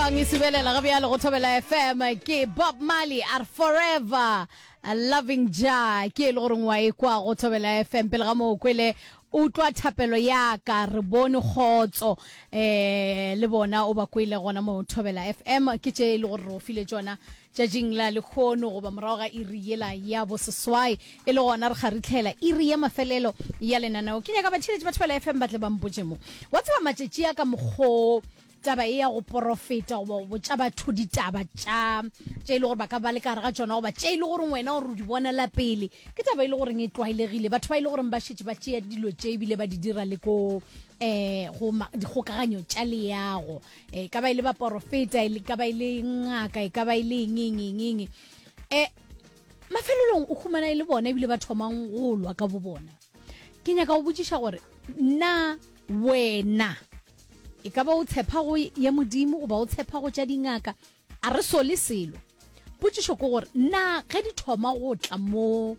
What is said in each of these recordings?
Bang e subelela ga bjalo go thobela fm ke bob marley are forever a loving ja ke e le goreng wa e kwa go thobela fm pele ga moo kwele utlwa thapelo ya ka re bone kgotso eh le bona o ba kwele gona mo thobela fm ke tše e le gore re o file tšona tšatšing la lekgono goba morago ga iri yela ya boseswai e le gona re kgaritlhela iri ya mafelelo ya lenaneo ke nyaka batšheletši ba thobela fm ba tle ba mpotše mo wa tseba matšatši a ka mokgoo taba e ya go porofeta goba go botša batho ditaba tša tše e le gore ba ka ba le ka gare ga tsona goba tše e le goreng wena gore o di bonela pele ke taba e le goreng e tlwaelegile batho ba e le goreng ba šetse ba tšea dilo tše ebile ba di dira le ko eh go dikgokaganyo tša leago e ka ba e le baporofeta e ka ba e le ngaka e ka ba e le eng eng eng eng um mafelelong o humana e le bona ebile ba thomang go lwa ka bo bona ke nyaka go botšiša gore na wena e ka ba o tshepa go ya modimo goba o tshepa go tša dingaka a re sole selo potšišo ke gore na ge di thoma go tla mo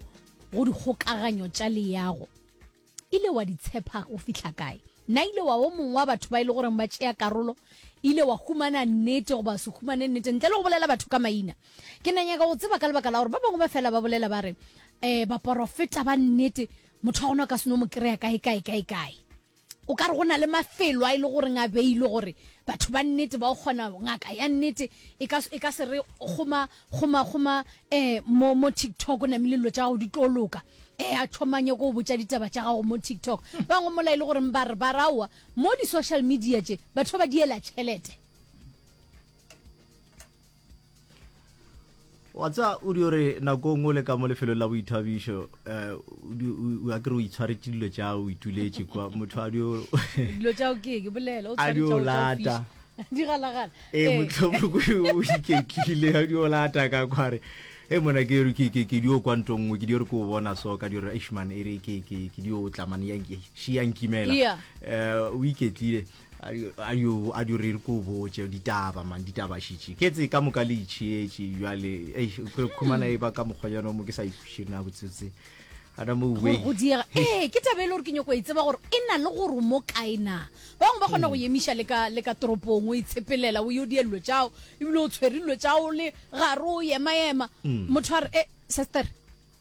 go dikgokaganyo tša leyago ile wa di tshepa go fihla kae na ile wa o mongwe wa batho ba e le goreng ba tšea karolo ile wa humana nnete goba se humane nnete ntle le go bolela batho ka maina Ke na nyaka go tseba ka lebaka la gore ba bangwe ba fela ba bolela ba re um baporofeta ba nnete motho wa gona o ka seno mo kry-a kae kae kae kae o ka re go na le mafelo a e le goreng a beilwe gore batho ba nnete ba o kgona ngaka ya nnete e ka e se re goma goma goma eh mo mo TikTok o namile dilo tsa gago di tlo loka eh a thomanye go botsa ditaba tsa gago mo TikTok bangwe mola e le gore ba re ba rawa mo di social media tse batho ba diela tšhelete wa tsa o di ore nakong o le ka mo lefelong la boithabišo um o akere o itshwaretse dilo tša o ituletse kwa motho a dio dilo tša o ke ke bolela o tshwaretse lata di galagala e eh. motlhomoko o iketlile a dio lata ka kware e mona ke re ke ke ke dio kwa ntong nngwe ke dio re ke o bona so ka dio re ishman e re ke ke ke dio tlamane yang ke shi yang kimela eh o iketlile ayo a di re ko botse ditaba man ditaba shitše ke tse ka moka le itšhietše jale e kgolo khumana e ba ka mokgwanyana mo ke sa ikhušire na botsetse ana mo uwe go diega eh ke taba ile gore ke nyoko e tseba gore e na le gore mo kae na ba bangwe ba kgona go yemiša le ka le ka toropong o itshepelela o yo di ello tšao ebile o tshwerillo tšao le gare o yema yema motho a re eh sister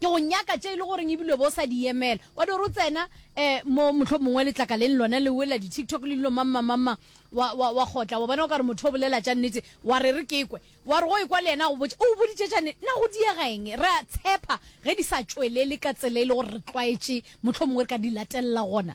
Ke go nyaka tše e le goreng ebile o be o sa di yemela. Wa di gore o tsena um mo mohlomongwe letlakaleng lona le wela di-tiktok le dilo mammamamang, wa, wa, wa kgotla, wa bona o ka re motho o bolela tša nnete, wa re re ke kwe. Wa re go ekwa le yena a go botša, O boditše tša nnete? Na go diega eng? Re a tshepa ge di sa tšwelele ka tsela e le gore re tlwaetše mohlomongwe re ka di latelela gona.